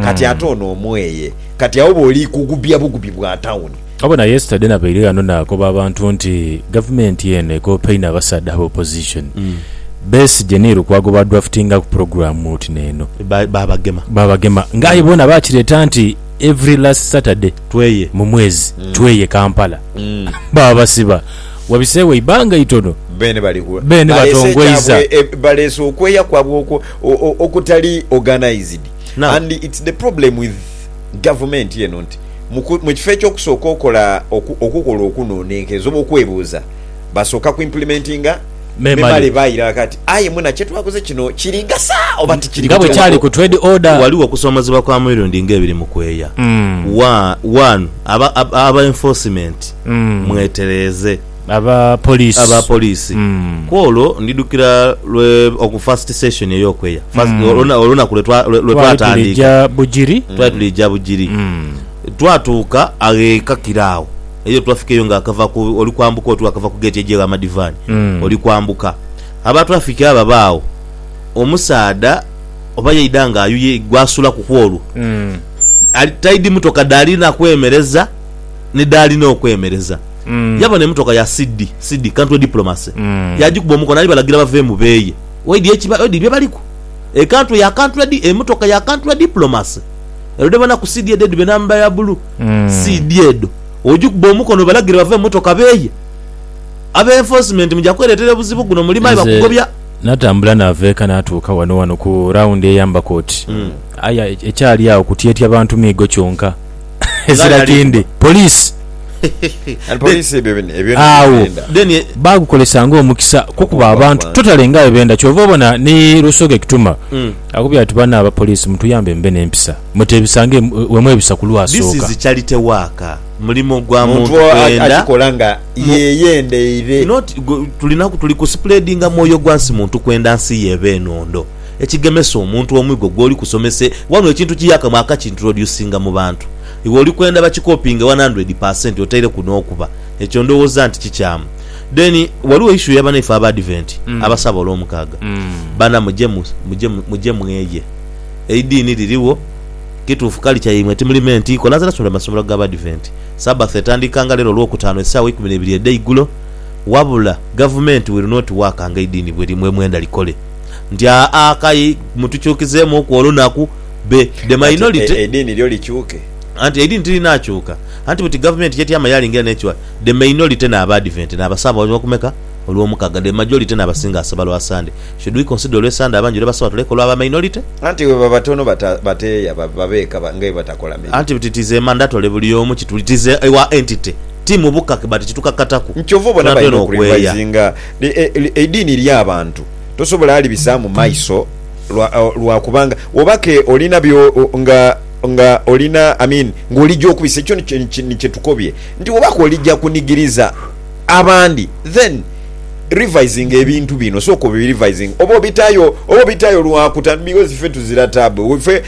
Kati ate ono omweye. Kati agho bwoli kugubya bugubi bwa town. Obona yesterday nabaire ghano nakoba abantu nti gavumenti eno ekopaine abasaadha aba opposition. Besigye ni Lukwago ba draftinga ku program oti neno. Babagema. Babagema nga aye bona bakireta nti every last Saturday Tweye. mu mwezi tweye Kampala. Babasiba wabisewo eibanga itono. Beene bali ku. Beene Baleese batongweiza. ekyabwe e, baleese okweya kwabwe okwo. Okutali organized and it's the problem with gavumenti eno nti mukifo ekyokusooka okola okukola okunonenkereza oba okwebuuza basooka ku implementinga memale bairala kati aye muna kyetwakoze kino kiri gasa oba tikiri gasa. Waliwo okusomozebwa kwa mirundi nga ebiri mukweya wanu aba enforcement mwetereeze. Aba police. Aba police. Kwolwo ndidhukira lwe oku first session ey'okweya, first oluna olunaku lwe twa lwe Twali twatandika. tulija Bugiri. Twali tulija Bugiri. Twatuuka agho e Kakira agho, eyo twafikeyo nga akava ku oli kwambuka oti wakava ku gate eja egha Madivani oli kwambuka. Aba traffic abo abaagho, omusaadha oba yaidha nga ayuye gwasulaku kwolwo, ali taidhi motoka dhali na kwemereza. ni dhaalina okwemereza. Yabona emotoka ya CD, CD, Country Diplomacy, yaagikuba omukono ali balagira bave mu beeye. Oidhi ekiba, oidhi bye baliku? E Country ya Country Di, emotoka ya Country Diplomacy. Erudhe bonaku CD edhedhiba enamba ya bulu. CD edho ogikuba omukono obalagire bave mu motoka beeye? Abe Enforcement muja kwereetera obuzibu guno mulime aye Nze bakugobya. natambula naava eka natuuka wano wano ku round eya Mbakoti. Aye ekyali agho kutyetya bantu miigo kyonka. Ezira kindi poliisi agho baagukozesa ng'omukisa kukuba abantu totale nga bwe benda. Kyova obona ni Rusoke Kituma akubye ati, Banno aba poliisi mutuyambe mube n'empisa, muteebisa nga bwe mwebisa ku lwasooka. Muntu akikola nga yeeyendeire. Ekigemesa omuntu omwigo gwoli kusomese wano ekintu kiyakamu akakintroducinga mu bantu. Iwe oli kwenda bakikopinge one hundred per cent otaireku n'okuba. Ekyo ndowooza nti kikyamu. Then waliwo issue ya banaife Abaadiventi abasaba Olwomukaaga. Bana muje mu, muje mu, muje mweye. Eidiini liriwo. Kituufu culture yaimwe timuli meant ikola. Nze nasomera mu masomero g'Abaadiventi. Sabbath etandika nga leero Olwokutaano essaawa eikumi n'eibiri edheigulo. Wabula Gavumenti will not work nga eidiini bwe, mwe mwenda likole. nti aa kayi mutukyukizeemuuku olunaku be the minority. Anti eidiini lyo likyuke. Anti eidiini tirinaakyuka. Anti buti gavumenti y'etyama yaalingira n'ekiwa the minority n'Abaadiventi n'abasaba olw'okumeka? Olw'omukaaga. The majority n'abasinga asaba lwa Sande. Should we consider olw'e Sande abangi lwe basaba tuleke olw'aba minority? Anti bwe baba tono bateeya babe eka nga bwe batakola mirimu. Anti buti it is a mandatory buli omu kituli it is our entity ti mu buka but kitukakataku. Nti kyova obona balina okurevisinga eidiini lya bantu tosobola alibisaamu maiso lwa kubanga oba ke olina byo nga nga olina I mean nga olija okubisa ekyo ni kye tukobye nti oba ke olija kunigiriza abandi then revisinga ebintu bino sooka obi revisinge oba obitayo oba obitayo lwa kuta because ffe tuzira taabu.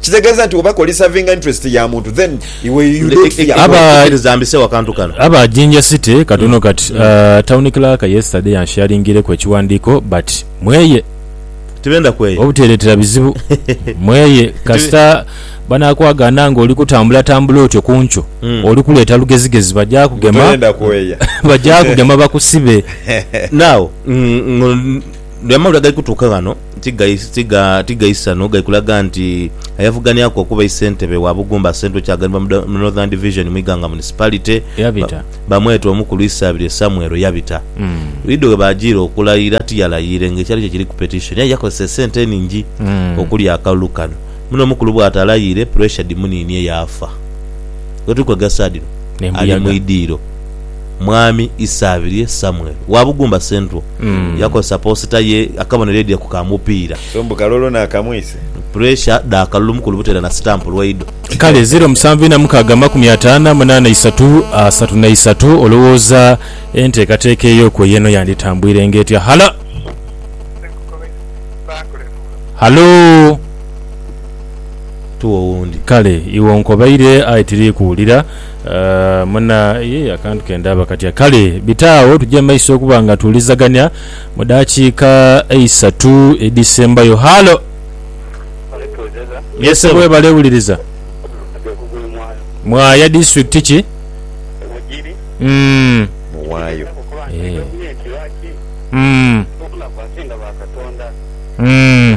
Kitegeeza nti oba kolisavinga interest ya muntu then iwe you Nti don't fear God. Aba- kikiriza mbisewo akantu kano. Aba Jinja City katono kati. Town clerk yesterday ansharingireku ekiwandiiko but mweye Tibenda kweyo. obuteretera bizibu mweye kasita banakwagaana nga oli kutambula tambula otyo kunkyo oli kuleeta lugezigezi baja kugema Toyenda kweya. baja kugema bakusibe. Now, ng- ng- amawulire agali kutuuka ghano. Tigaisano gali kulaga nti ayavuganiaku okuba isentebe wa Bugumba Central kyaganibwa mu Northern Division mu Iganga Municipality bamweta Omukulu Isabirye Samuel Yabita. Wido webajiira okulayira tiyalayiire nga ekyali kye kiri ku petition aye yakozesa esente eningi okulya akalulu kano muno Omukulu bwatalayiire pressure dhimuninie yaafa. Wetuli kwegasa dhino ali mu idiiro. Mwami Isabirye Samuel wa Bugumba Central yakozesa poosita ye akabonero edhye ku ka mupiira. So mbu kalolo naakamwise. Puresha dha kalulu mukulu buteera na sitampu lwaido. Kale ziro musanvu ina mukaaga amakumi ataano amunaana isatu asatu na isatu olowooza enteekateeka eyo kwe y'eno yanditambwirenga etya? Halo? Halo? Tuwe owundi. Kale iwe onkobaire aye tiri kuwulira. Muna, Yee, akantu ke ndaba katya? Kale, bita agho tuje mu maiso okuba nga tuwulizagania mu daakiika eisatu edhisembayo. Halo! Yee, ssebo. Webale wuliriza. Mwaya disitulikiti ki? Umm. Mwayo. Eeh. Umm. Umm.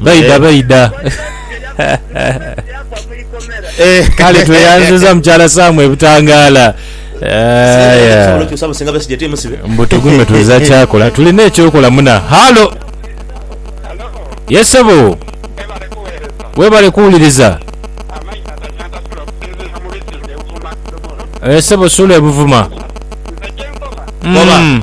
Baidha baidha. Kale tweyanziza mukyala Sam e Butangaala. Mbu tugume tuliza kyakola. Tulina ekyokola muna. Halo. Ye sebo. Webale kuwuliriza. E sebo Sule Buvuma. Koba.